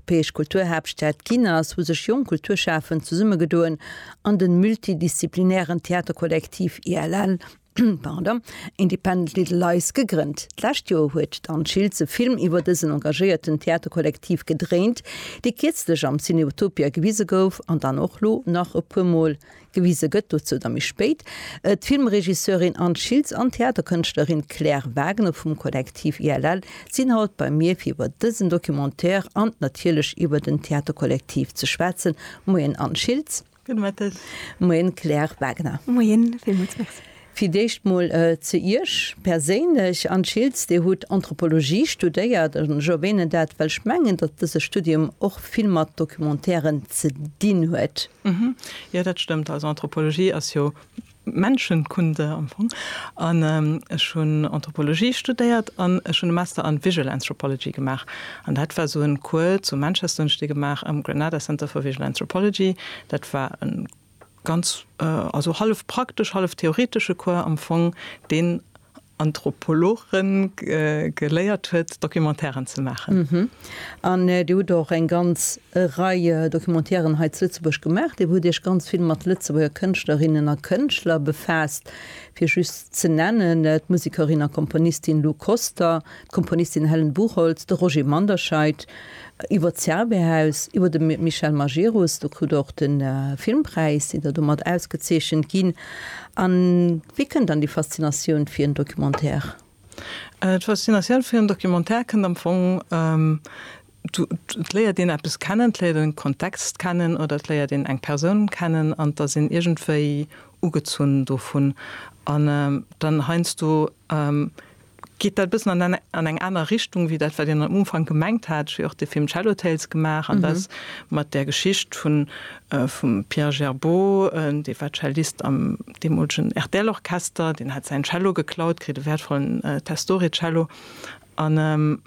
Europäesch Kulturhaaptstad ginn ass, hu sech jonk Kulturschafend zesummegedoen an de multidisziplinären Theaterkollektiv ILL, pardon, Independent Little Lies gegrënnt. D'lescht Joer huet d'Anne Schiltz e Film iwwer dësen engagéierten Theaterkollektiv gedréint, dee kierzlech am Cineutopia gewise gouf an dann och lo nach e puer Mol Gewise gëtt, dozou da méi spéit, d'Filmregisseurin Anne Schiltz an d'Theaterkënschtlerin Claire Wagner vum Kollektiv ILL sinn haut bei mir fir iwwer dësen Documentaire an natierlech iwwer den Theaterkollektiv ze schwätzen. Moien Anne Schiltz. Gudde Mëtten. Moien Claire Wagner. Moien, villmools Merci. Fir d'éischt mol ze Iech perséinlech, Anne Schiltz, Dir hutt Anthropologie studéiert. Ech erwänen dat, well ech mengen, datt dëse Studium och vill mat Documentairen ze dinn huet. Jo, dat stëmmt. Also Anthropologie ass jo Menschenkunde am Fong. An ech hunn Anthropologie studéiert an ech hunn e Master an Visual Anthropology gemaach. An dat war esou e Cours zu Manchester, hunn ech dee gemaach am Granada Center for Visual Anthropology. Dat war e. Ganz, also hallef praktesch, hallef theoretesche Cours am Fong, deen Anthropologe geléiert huet, Documentairen ze maachen. An Dir hutt och eng ganz Rei Documentairen hei zu Lëtzebuerg gemaach. Dir hutt Iech ganz vill mat Lëtzebuerger Kënschtlerinnen a Kënschtler befaasst. Fir just ze nennen, d'Musekerin a Komponistin Lou Koster, d'Komponistin Helen Buchholtz, de Roger Manderscheid iwwer d'Zerbehaus, iwwer de Michel Majerus, do krut Der och de Filmpräis, sidd Der domat ausgezeechent ginn. A wéi kënnt dann déi Faszinatioun fir en Documentaire? D'Faszinatioun fir en Documentaire kënnt am Fong, et léiert een eppes kennen, et léiert een e Kontext kennen oder et léiert een eng Persoun kennen an et ass een iergendwéi ugezunn dovun. An dann heiansdo geet dat e bëssen an en, an eng aner Richtung wéi dat, wat een am Ufank gemengt hat. Ech hu jo och de Film Cello Tales gemaach an dat mat där Geschicht vun, vum Pierre Gerbeau, dee war Cellist am deemolegen RTL-Orchester, deen hat säin Cello geklaut kritt, e wäertvollen Testore-Cello, an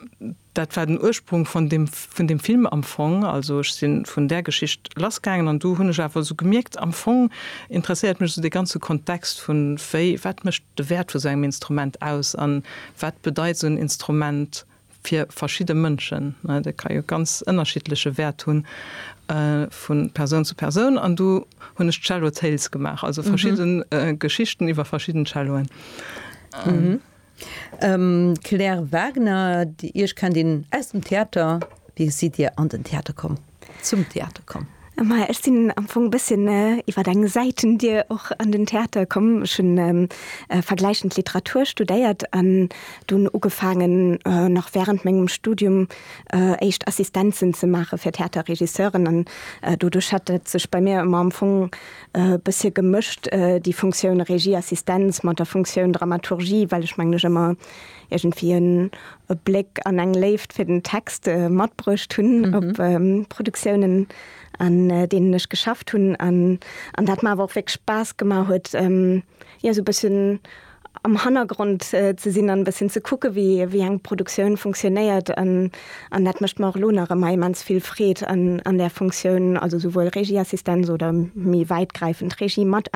Dat war den Ursprung vun dem, vun dem Film am Fong. Also ech si vun där Geschicht lassgaangen an du hunn ech awer esou gemierkt, am Fong interesséiert mech esou dee ganze Kontext vun, wéi, wat mécht de Wäert vu sou engem Instrument aus an wat bedeit esou en Instrument fir verschidde Mënschen, ne, dat ka jo ganz ënnerschiddleche Wäert hunn vu Persoun zu Persoun an du hunn ech Cello Tales gemaach, also verschidde Geschichten iwwer verschidden Celloen. Claire Wagner, Iech kennt een aus dem Theater. Wéi sidd Dir an den Theater komm, zum Theater komm? Maja, ech sinn am Fong e bësschen iwwer eng Säitendier och an den Theater komm. Ech hu vergläichend Literatur studéiert an dunn ugefaangen, nach wärend mengem Studium, éischt Assistenzen ze maache fir Theaterregisseuren. An doduerch hat et sech bei mir ëmmer am Fong e bëssche gemëscht, déi Funktioun Regieassistenz mat der Funktioun Dramaturgie, well ech mengen, ech ëmmer iergendwéi en e Bléck an eng Léift fir den Text matbruecht hunn op Produktiounen, an deenen ech geschafft hunn. An dat mer awer och wierklech Spaass gemaach huet, jo sou bëssen am Hannergrond ze sinn an e bëssen ze kucke wéi wéi eng Produktioun funktionéiert an an dat mécht mer och elo nach ëmmer immens vill Freed an an där Funktioun, also souwuel Regieassistenz oder méi wäitgräifend Regie mat